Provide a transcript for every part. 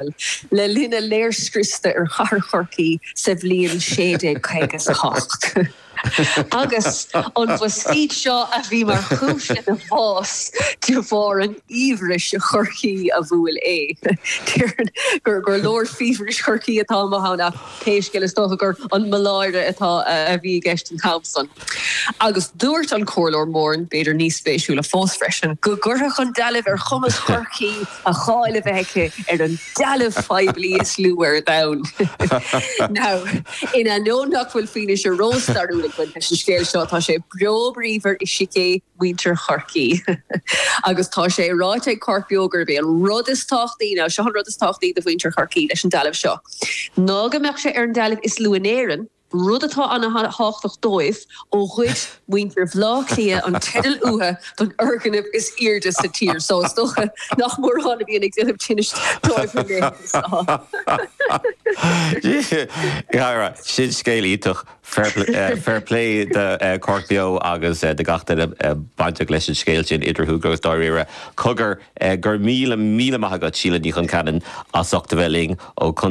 Gael le linn a léirscriosta ar chathair Chorcaí sa bhliain 1658. Agus an muiscít seo a bhí mar chúis lena bhás de bharr an fhiabhrais Chorcaí a bhuail é. Déarfainn gur leor fiabhrais Chorcaí atá amuigh ann ach pé scéal is dócha gur an maláire atá a bhí i gceist an t-am san. Agus dúirt an Comhairleoir Moran, b'fhéidir níos spéisiúla fós freisin, go gcuirfeadh an dealbh ar chumas Chorcaí, a cháil a bheith aici ar an dealbh phoiblí is lú ar domhan. Now, in ainneoin nach bhfuil fianaise ró-stairiúil ag baint leis an scéal seo, tá sé beo bríomhar i sicé muintir Chorcaí. Agus tá sé ráite ag Cork Beo gurb é an rud is tábhachtaí, now, seo an rud is tábhachtaí do mhuintir Chorcaí leis an dealbh seo, ná go mbeadh sé ar an dealbh is lú in Éirinn, rud atá ana thábhachtach dóibh, ó ghoid muintir Bhleá Cliath an teideal uatha don fhoirgneamh is aoirde sa tír so is dócha nach mórán a bhíonn ag déanamh tinnis dóibh na laethe so. Sin scéal iontach. Fair play do Cork Beo agus do gach duine bainteach leis an scéal sin, idir shúgradh agus dáiríre. Cogar, go raibh míle, míle maith agat Síle Ní Choncheanainn as ucht a bheith linn ó Co.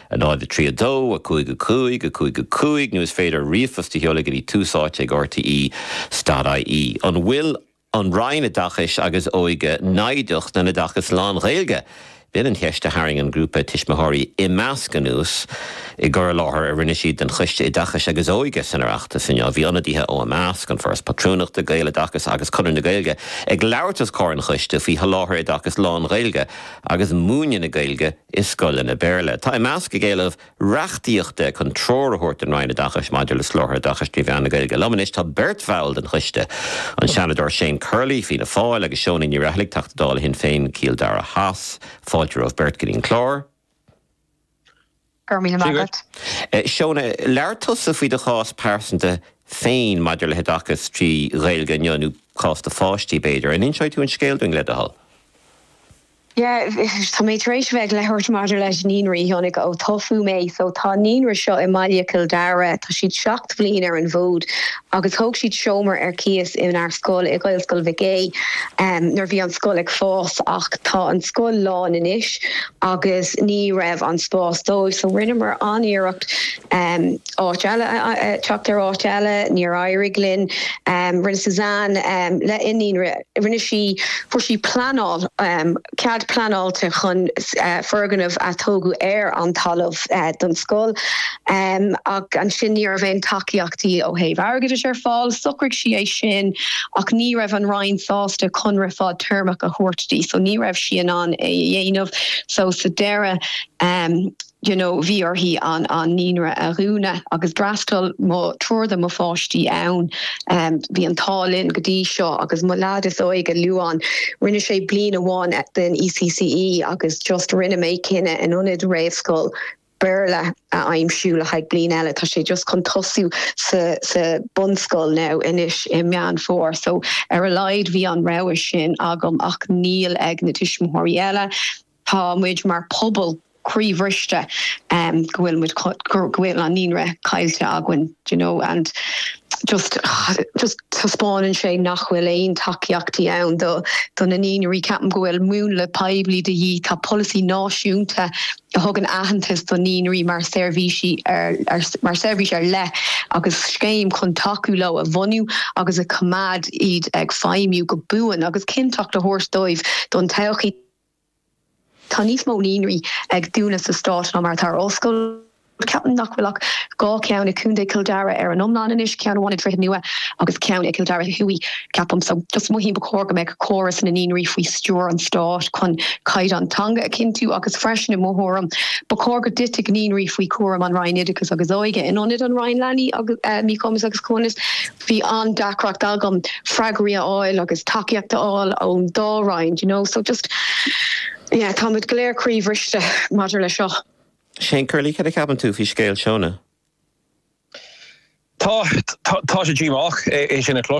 0, 3, 2, 5, 5, 5, 5, nó is féidir ríomhphost a sheoladh go dtí, tús áite ag rte, stad IE. An bhfuil An Roinn Oideachais agus Óige naimhdeach don oideachas lán-Ghaeilge? B'in an cheist a tharraing an grúpa tuismitheoirí Imeasc anuas i gcur i láthair a rinne siad don Choiste Oideachais agus Óige san Oireachtas inniu. Bhí ionadaithe ó Imeasc, An Foras Pátrúnachta, Gaeloideachas agus Conradh na Gaeilge ag labhairt os comhair an choiste faoi sholáthar oideachais lán-Ghaeilge agus múineadh na Gaeilge i scoileanna Béarla. Tá Imeasc ag éileamh reachtaíochta chun treoir a thabhairt don Roinn Oideachais maidir le soláthar oideachais trí mheán na Gaeilge. Liom anois tá beirt bhall den choiste, an Seanadóir Shane Curley, Fianna Fáil, agus Shónagh Ní Raghallaigh, Teachta Dála Shinn Féin, Cill Dara Theas. Fáilte romhaibh beirt go dtí an clár. Go raibh míle maith agat. Shónagh, labhair tusa faoi do chás pearsanta féin maidir le hoideachas trí Ghaeilge inniu, nó cás do pháistí b'fhéidir. An inseoidh tú an scéal dúinn le do thoil? Yeah, tá mé tar éis bheith ag labhairt maidir leis na naíonraí, tháinig ó toghadh mé, so tá an naíonra seo i mBaile Chill Dara, tá siad seacht bhliain ar an bhfód agus thóg siad seomra ar cíos inár scoil, i Ghaelscoil Mhic Aodha, em, nuair a bhí an scoil ag fás ach tá an scoil lán anois agus ní raibh an spás dóibh, so rinneamar an-iarracht, em, áit eile teacht ar áit eile. Níor éirigh linn. Rinne Suzanne le hiníon rinne sí fuair sí pleanáil cead pleanáilte chun foirgneamh a tógadh ar an talamh don scoil. Ach ansin ní raibh aon tacaíochtaí ó thaobh airgeadais ar fáil. Socraigh sí é sin ach ní raibh an Roinn sásta conradh fadtéarmach a thabhairt di. So ní raibh sí in ann é a dhéanamh. So sa deireadh. you know bhí uirthi an naíonra a dhúnadh agus d'fhreastail mo triúr de mo pháistí ann em bhí an t-ádh linn go dtí seo agus mo leaid is óige Luan rinne sé bliain amháin den ECCE agus just rinne mé cinneadh ionad réamhscoil Béarla a aimsiú le haghaidh bliain eile tá sé just chun tosú sa sa bunscoil now anois i Meán Fómhair so ar a laghad bhí an rogha sin agam ach níl ag na tuismitheoirí eile Tá muid mar pobal croíbhriste go bhfuil muid, go bhfuil an naíonra caillte againn you know and just just taispeánann sé nach bhfuil aon tacaíochtaí ann do do na naíonraí. Ceapaim go bhfuil múnla poiblí de dhíth,, tá polasaí náisiúnta a thugann aitheantas do naíonraí mar seirbhísí ar ar mar seirbhís ar leith agus scéim chun tacú leo a bhunú agus a choimeád iad ag feidhmiú go buan agus cinnteacht a thabhairt dóibh don todhchaí. Tá níos mó naíonraí ag dúnadh sa stát ná mar atá ag oscailt. Ceapaim nach bhfuil ach dhá cheann i Contae Chill Dara ar an iomlán anois, ceann amháin i nDroichead Nua agus ceann i Cill Dara Thuaidh, ceapaim. So, just mothaím ba chóir go mbeadh córas na naíonraí faoi stiúir an stáit chun caighdeán teanga a chinntiú agus freisin, i mo thuairim, ba chóir go dtitfeadh naíonraí faoi chúram an Roinn Oideachais agus Óige in ionad an Roinn Leanaí, Míchumais agus Comhionannais. Bhí an-deacracht agam freagraí a fháil agus tacaíocht a fháil ón dá roinn, you know, so just yeah tá muid go léir croíbhriste maidir le seo. Shane Curley, cad a cheapann tú faoi scéal Shona? Tá sé díomách é sin a chlos.